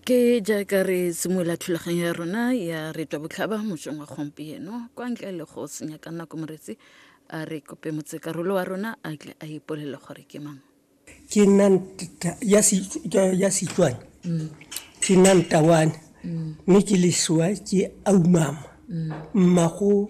ke jaaka re simolola thulaganyo ya rona ya retwa botlhaba mosong wa gompieno kwa ntle le go senya ka nako moretsi a re kope motsekarolo wa rona a tle a ipolele gore ke mang ke nna ya setswane ke nna ntawane mme ke lesoa ke aumama mmago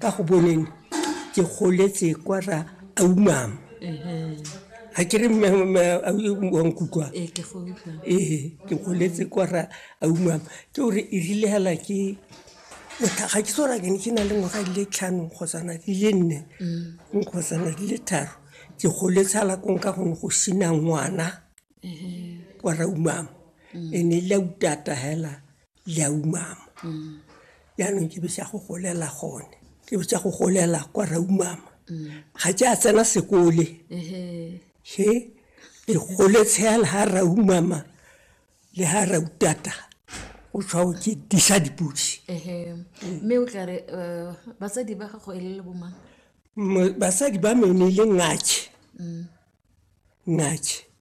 ka go boneng ke goletse kwa ra aumama ga ke re wankutlwa ee ke goletse kwa ra aumama ke gore e rile hela ke ga ke tsora ke ne ke na le ngwaga di le tlhano kgotsana di le nne mm. kgotsana di le tharo ke goletse hala kong ka gone go sina ngwana kwa ra umama e ne e le utata hela le a umama jaanong ke bese ya go golela gone ke bese ya go golela kwa ra umama ga ke a tsena sekole he ke gole tshela ga ra umama le ga ra utata o tshwao ke disa dipodi mme o tla re um batsadi ba gago e le le bomang basadi ba mene e le ngake ngake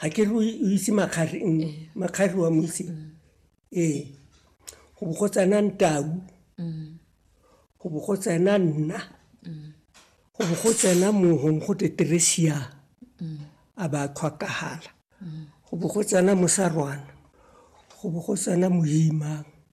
ga ke re o itse makgari mm, eh. makgari wa mo itse mm. ee go bo go tsena ntau go bo go tsena nna go bo go tsena mohong go te teresia a ba tlhwakagala go bo go tsena mosarwana go bo go tsena moimang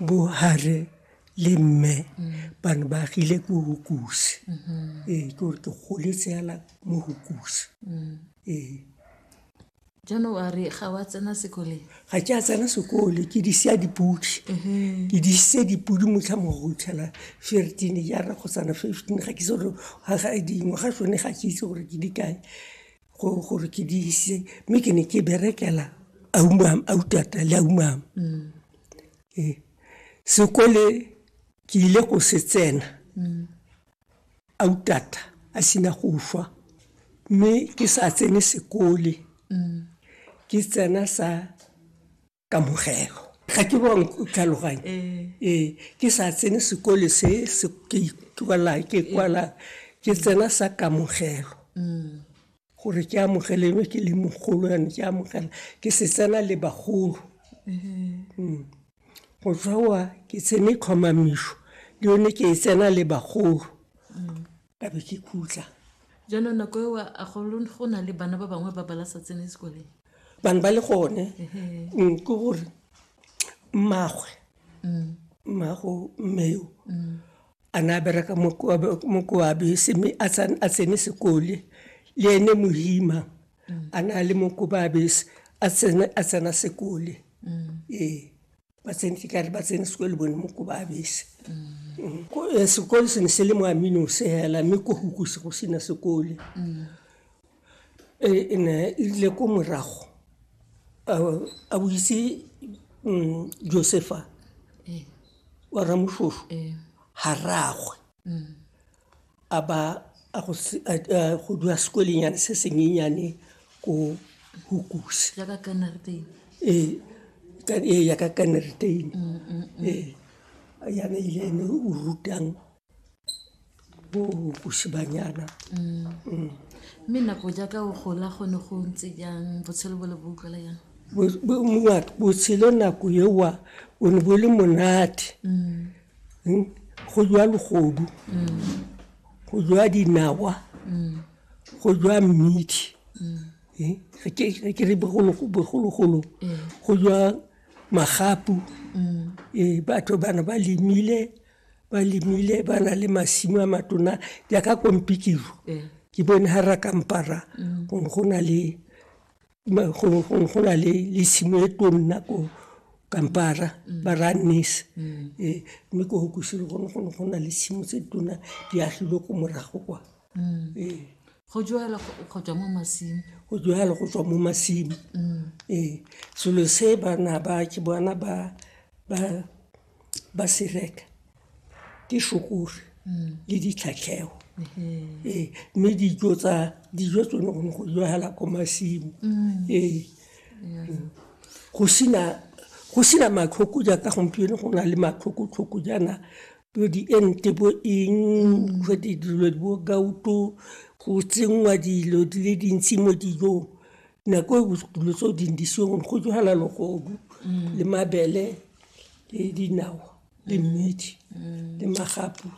bo hare le mme ba ne ba agile ko hukusi ee ke gore ke goletse fela mo hukusi ee jaanong a re ga wa tsena sekoleng ga ke a tsena sekole ke di sia dipodi ke di ise dipodi motlha mo go tlhela fifteen jaana go tsana fifteen ga ke itse gore dingwaga tsone ga ke itse gore ke di kae gore ke di ise mme ke ne ke berekela aumam autata le aumam mm. ee sekole ke ile go se tsena mm. autata a sena go fa mme ke sa tsene sekole mm. ke tsena sa kamogelo ga ke bong tlhaloganye ee ke sa tsene sekole se ke ikwala ke kwala ke tsena sa kamogelo gore ke amogelelwe ke le mogolo yane ke amogela ke se tsena le bagolo mm. go tswa ke tsene tlhomamiso le yone ke e tsena le bagolo ka be ke khutla jaanong nako eo a go na le bana ba bangwe ba bala sa tsene sekoleng bane ba le gone mm, ke gore mmagwe mm. mmago mmeo mm. a ne a bereka mokoabe seme a tsene sekole le ene mohima a ne a le mokobabe a tsena sekole ee ba tsene ke kare ba tsene sekolo bone mo ko ba abese Ko- eh, sekolo se ne se le mo aminose hela mme ko hukuse go sena sekole Eh, e ne e rile ko morago a- a boitse mm, josefa wa ramoshosho ga ragwe a ba a go se- a- a go dula sekwelengyane se senyenyane ko hukuse jaaka kana re teng ee ka- ee ya ka kaneritein ee yana ile ene o rutang bo hukuse banyana mme nako jaaka o gola gone go ntse jang botshelo bo le bo utlwala jang Bo- bo- mongwe a re, botshelo nako ewa o ne bo le monate hmm? go jwa legodu go jwa dinawa go jwa mmidi eh, re ke re bogologolo go jwa magapu ee batho bana ba lemile ba lemile ba na le masimo a matona jaaka kompikiro ke bone ga ra kampara go na le go na le le tshimo e tonna ko kampara mm. ba ra nese mm. eh, mme ko go kusile gone gone go na le tshimo tse tona di agilwe ko morago kwa mm. eh. go jalo go tswa mo masimo go jalo go tswa mo masimo ee selo se bana ba ke bona ba ba ba se reka ke shokore mm. le ditlhatlhego mm-hmm. ee mme dijo tsa dijo tsone gone go jala ko masimo mm. ee go sena go sena matlhoko jaaka gompieno go na le matlhokotlhoko jaana bo diente bo eng mm. jwa dilo bo gauto go tsenngwa dilo di le dintsi mo dijong nako e dilo tseo dindisiong go jala logodu le mabele le dinawa le mmidi le magapu .